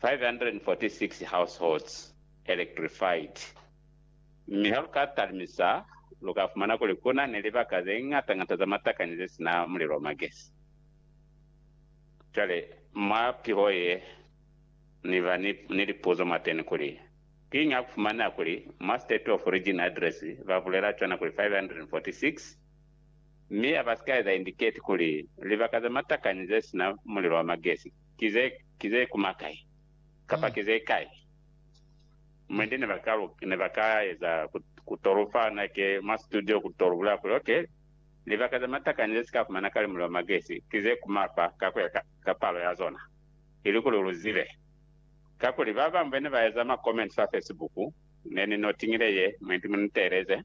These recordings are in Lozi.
546 households electrified, mi ha lu ka talimisa, lu ka fumana kuli ku na ni libaka ze ñata-ñata za matakani ze si na mulilo wa magesi. Cwale, mwa piho ye, ni ba ni, ni lipuzo mwateni kuli, Kiñi ha ku fumaneha kuli mwa State of Origin Address ba bulela cwana kuli 546, mi a ba si ka eza indicate kuli libaka za matakani ze si na mulilo wa magesi? Ki ze, ki ze kuma kai? Kapa ki ze kai? Mwendi ne ba ka, ne ba ka eza ku, ku to lu fa nake mwa situdio ku to lu bulela kuli, Okay, libaka ze matakani ze si ka fumana kale mulilo wa magesi, ki ze kuma fa, ka ku ya ka, ka palo ya zona. Ilikuli lu zibe. Kakuli ba bañwi be ne ba eza ma comments fa Facebook, ne ni no tiñile ye, mwendi mu ni teeleze,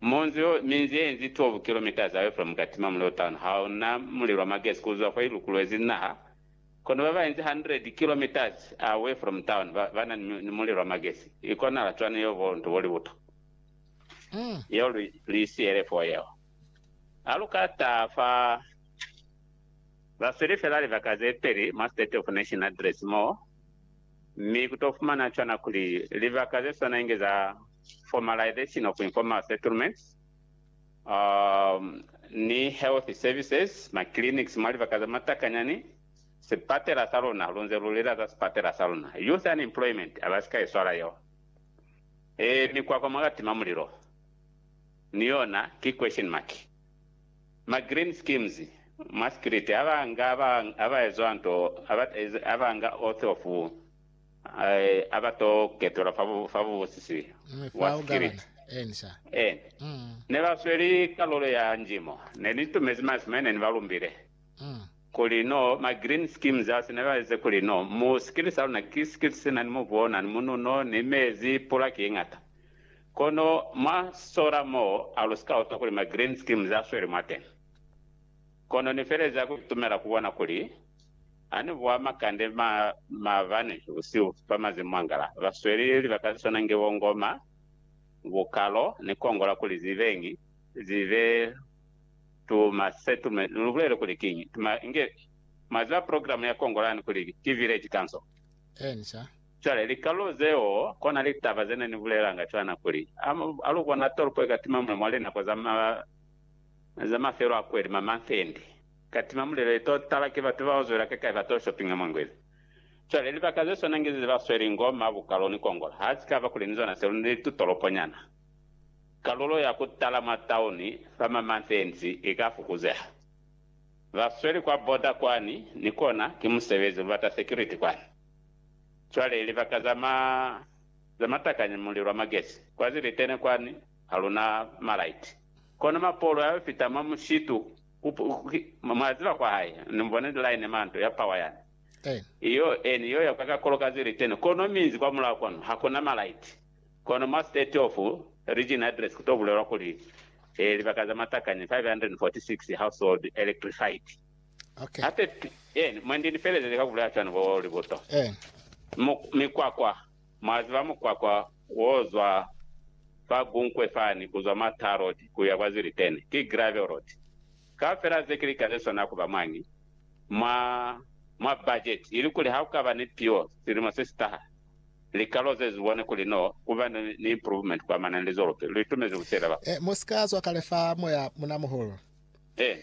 Monzi o minzi ye inzi 12 kilometres away from Katima Mulilo Town ha u na mulilo wa magesi ku zwa kwa i lukulwezi naha. Kono ba ba inzi 100 kilometres away from town ba ba na ni mulilo wa magesi. I konahala cwani yeo bo nto bo libuto yeo lu lu i siyele foo yeo? Ha lu ka taha fa ba sweli fela libaka ze peli mwa State of Nation Address moo Mi ku to fumana cwana kuli libaka ze swana inge za formalization of informal settlements, um, ni health services, ma clinics mwa libaka za matakanyani, sipatela sa luna, lu nze lu lela za sipatela sa luna, youth unemployment, a ba si ka i swala yeo. E, mikwakwa mwa ka tima mulilo, ni yona ki question mark. Ma green schemes, mwa Sikiriti, a ba nga ba, a ba ezwa nto, a ba, a ba nga oath of, a ba to ketelwa fa, fa Mubusisi Mm, wa fao gabana. Sikiriti. Eni, sa. Eni. Mm, Ne ba sweli kalulo ya njimo. Ne ni tumezi masi mwe ne ni ba lumbile. mm. Kuli, no, ma green schemes asi ne ba eze kuli, no, mu Sikiriti sa luna ki Sikiriti se na ni mubu o na ni mununo, ni mezi, pula ki ye ñata. Kono mwa sola mo a lu scouta kuli ma green screens a sweli mwateñi. Kono ni feleza ku itumela ku bona kuli ha ni buha makande ma maabani busihu fa mazimu mangala ba sweli libaka ze swana nge bo ngoma, bukalo, ni kongola kuli zi beñi, zi be tuma se tume. Lu bulele kuli kiñi tuma? Inge mwa ziba program ya kongola ni kuli ki village council. Eeni sa. Cwale, likalulo zeo, kona litaba ze ne ni bulelanga cwana kuli, a, a lu bona tolopo ikatima mule mwa linako za ma, za mafelo a kweli, ma manthendi, ikatima mule le to tala ki batu bao zwela kakai ba to shoppinga mwa ngwezi. Cwale, libaka ze swana nge ze ba sweli ngo ma bukalo ni kongola, ha si ka ba kuli ni zona selu ni tutolopo nyana, kalulo ya ku tala mwa tauni fa ma manthendi i ka fukuzeha. Ba sweli kwa border kwani, ni kona ki musebezi, lu bata security kwani. Cwale libaka za ma, za matakanya mulilo wa magesi, kwa zilitene kwani, haluna ma light. Kono mapolo ya yo fita mwa mushitu, ku, ku, mwa ziba kwa hae, ni mu bona line manto ya power yani. I yo, eni yo ya kwa kakolo ka zilitene, kono minzi kwa mulaho kwanu, hakuna ma light. Kono mwa state of region address ku to bulelwa kuli, eh, libaka za matakanya 546 household electrified. Hape pili yenu, mwandi ni felezezi ka ku bulaya cwani bo libuto, mikwakwa, mwa ziba mukwakwa wo zwa fa Gunkwe fani, ku zwa mwa Tar Road ku ya kwa Zwelithini, ki Gravel Road. Kaufela ze ki lika ze swana ku ba mwañi mwa, mwa bajeti, ilikuli ha ku ka ba ni piwo silimo se si taha, likalo ze zu bone kuli no ku ba ni, ni improvement ku amana ni lizolope lu itumezi ku sheleba. Mu si ka zwa kale fa moya munamuhulu. Eeni.